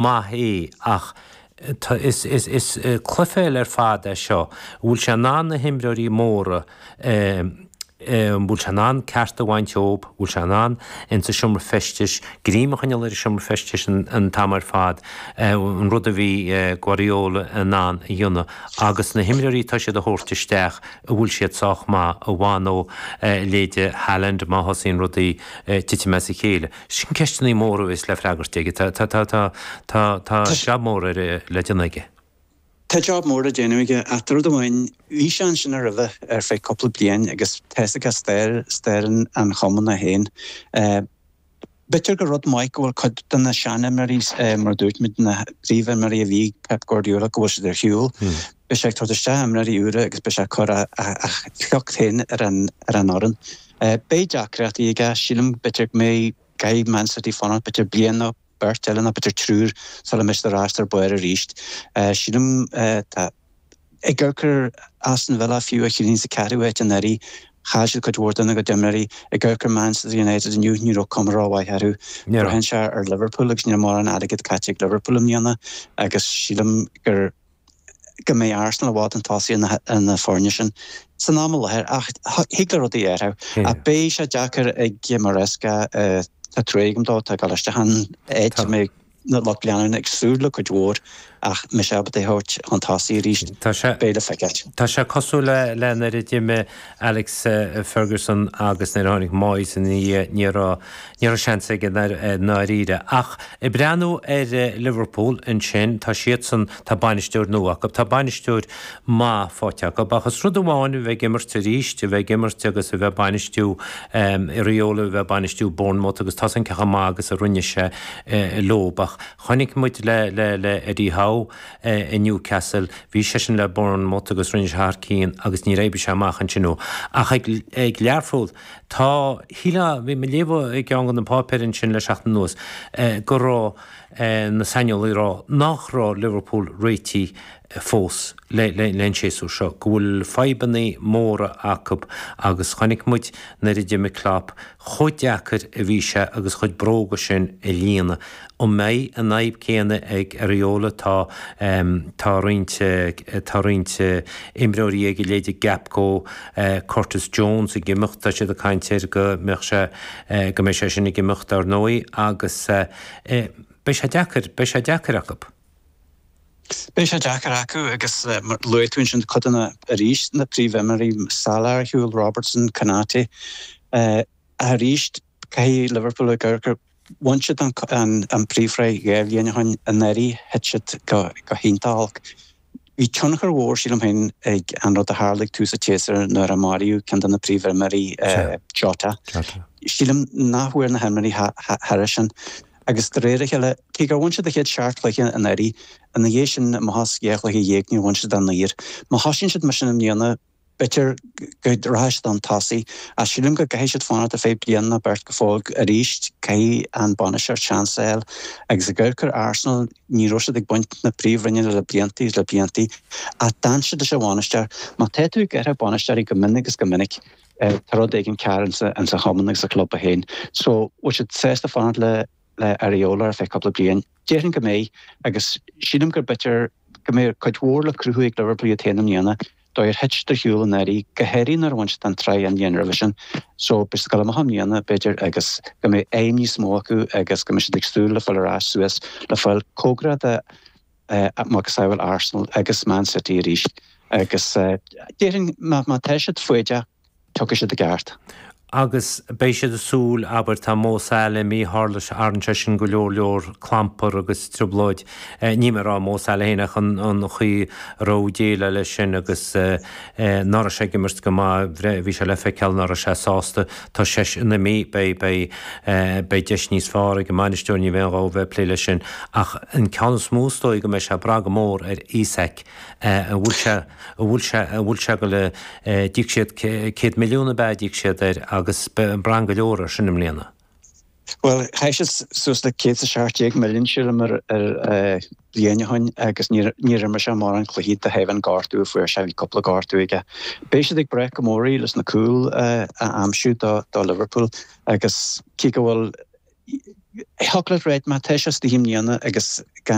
maith í, ach is club difriúil ar fad é seo, bhfuil sé in ann na himreoirí móra an bhfuil sé in ann ceart a bhaint dhíob, bhfuil sé in ann ins an seomra feistis, greim a choinneáil ar an seomra feistis an t-am ar fad, an rud a bhí Guardiola in ann a dhéanamh, agus na himreoirí atá siad a thabhairt isteach, an bhfuil siad sách maith, an bhfanfaidh leithéide Haaland má thosaíonn rudaí ag titim as a chéile. Sin ceisteannaí móra a bheas le freagairt aige. Tá, tá, tá, tá, tá, tá jab mór ar, le déanamh aige. Tá jab mór le déanamh aige ach rud amháin, bhí sé ansin roimhe ar feadh cúpla bliain agus tá a fhios aige stair, stair an Chumann é féin. B'fhéidir gur rud maith go bhfuil cuid de na seanimreoirí, mar a dúirt muid, na príomhimreoirí a bhí ag Pep Guardiola go bhfuil siad ar shiúl. Beidh sé ag tabhairt isteach imreoirí úra agus beidh sé ag cur a, a, a shliocht féin ar an, ar an fhoireann. Beidh deacrachtaí aige, sílim, b'fhéidir go mbeidh ar Man City fanacht b'fhéidir bliain nó beirt eile nó b'fhéidir triúr sula mbeidh siad ar ais ar barr arís. Sílim dá gcuirfeá Aston Villa fiú, a bhí sa ceathrú háit anuraidh, chaill siad cuid mhór dena gcuid imreoirí, dá gcuirfeá Manchester United inniu ní raibh cuma rómhaith orthu, braitheann sé ar Liverpool agus níl mórán airgead caite ag Liverpool i mbliana agus sílim gur. go mbeidh Arsenal i bhfad chun tosaigh ar na foirne sin san am i láthair ach thig le rudaí athrú ach beidh sé deacair ag Maresca, tá trua agam dó, tá sé ag dul isteach in áit a mbeidh an lucht leanúna ag súil le cuid mhór ach más ábalta é a thabhairt chun tosaigh arís, beidh le feiceáil. Tá sé cosúil le an oiread imir Alex Ferguson agus nuair a tháinig Moyes ina dhiaidh ní raibh ní raibh seans aige i ndáiríre ach ag breathnú ar Liverpool ansin tá siadsan tá bainisteoir nua acu tá bainisteoir maith faighte acu ach is rud amháin a bheith ag imirt arís a bheith ag imirt agus a bheith bainistiú Iraola a bheith bainistiú Bournemouth agus tá an cineál maith agus a rinne sé leob ach chonaic muid le le le Eddie Howe é i Newcastle, bhí seisean le Bournemouth agus rinne sé thar cinn agus níor éirigh sé amach ansin dó. Ach ag Learpholl, tá, shílfeá, bhí mé ag léamh i gceann de na páipéir ansin le seachtain anuas go raibh na saineolaithe ag rá nach raibh Liverpool réitigh fós le an séasúr seo, go bhfuil fadhbanna móra acu agus chonaic muid nuair a d'imigh Klopp chomh deacair a bhí sé na bróga sin a líonadh An mbeidh an fhadhb céanna ag Iraola? Tá tá roinnt tá roinnt imreoirí a leithéid de Gakpo, Curtis Jones ag imeacht. Tá siad ag caint air go mbeadh sé go mbeidh sé sin ag imeacht, ar ndóigh, agus beidh sé deacair beidh sé deacair acu. Beidh sé deacair acu agus luaigh tú ansin cuid de na arís na príomhimreoirí, Salah ar shiúl, Robertson, Konate. Arís, caithfidh Liverpool a gcur, a. Bhain siad an príomhshraith dhá bhliain ó shin, anuraidh, thit siad go hiontach olc. Bhí tionchar mhór, sílim féin, ag an rud a tharla ag tús an tséasúir nuair a maraíodh ceann de na príomhimreoirí, Jota. Sílim nach bhfuair na himreoirí thairis sin. Agus de réir a chéile, cé gur bhain siad an chéad seacht chluiche anuraidh, ina dhiaidh sin, amach as dhá chluiche dhéag, níor bhain siad a naoi. Má thosaíonn siad mar sin i mbliana, B'fhéidir go rachaidh siad chun tosaigh, ach sílim go gcaithfidh siad fanacht ar feadh bliain nó beirt go fóill arís, caithfidh an bainisteoir seans a fháil agus ag amharc ar Arsenal ní raibh siad ag baint na príomhroinne le blianta is le blianta ach d'fhan siad leis an bhainisteoir. Má tá tú ag athrú bainisteoirí go minic is go minic tá rud éigin cearr ins an chumann agus sa chlub féin so bhfuil siad sásta fanacht le Iraola ar feadh cúpla bliain. Déarfainn go mbeidh, agus sílim gur b'fhéidir go mbeidh, cuid mhór le cruthú ag Liverpool iad féin i mbliana, an dóigh ar thit siad ar shiúl anuraidh go háirithe nuair a bhain siad an tsraith an bhliain roimhe sin, so beidh siad ag gabháil amach i mbliana, b'fhéidir, agus go mbeidh aidhm níos mó acu agus go mbeidh siad ag súil le fáil ar ais suas le fáil cóngarach do mhacasamhail Arsenal agus Man City arís agus déarfainn má tá siad foighdeach. Tiocfaidh siad i gceart. Agus beidh siad ag súil, abair, tá Mo Salah imithe, tharla sé, tharraing sé sin go leor leor clampar agus trioblóid, eh, níl mé ag rá Mo Salah féin ach an, an chaoi a raibh déileáil leis sin agus, eh, ná raibh sé ag imirt go maith, bhí sé le feiceáil ná raibh sé sásta, tá seisean imithe, beidh, beidh, eh, beidh deis níos fearr ag an mbainisteoir, ní bheidh aon ghá dó a bheith ag plé leis sin. Ach an ceann is mó is dóigh go mbeidh sé ag brath go mór ar Isak. An bhfuil sé, an bhfuil sé, an bhfuil sé go le, d'íoc siad céad milliún ab ea a d'íoc siad air agus braitheann go leor air sin i mbliana? Bhuel, chaith siad suas le céad is a seacht déag milliún sílim air bliain ó shin agus níor imir sé mórán cluichí de thaobh an gortú a fuair sé, bhí cúpla gortú aige. Beidh siad ag brath go mór uirthi leis na cúil a aimsiú do Liverpool agus cé go bhfuil, thiocfadh leat a rá má tá sé astoigh i mbliana agus gan,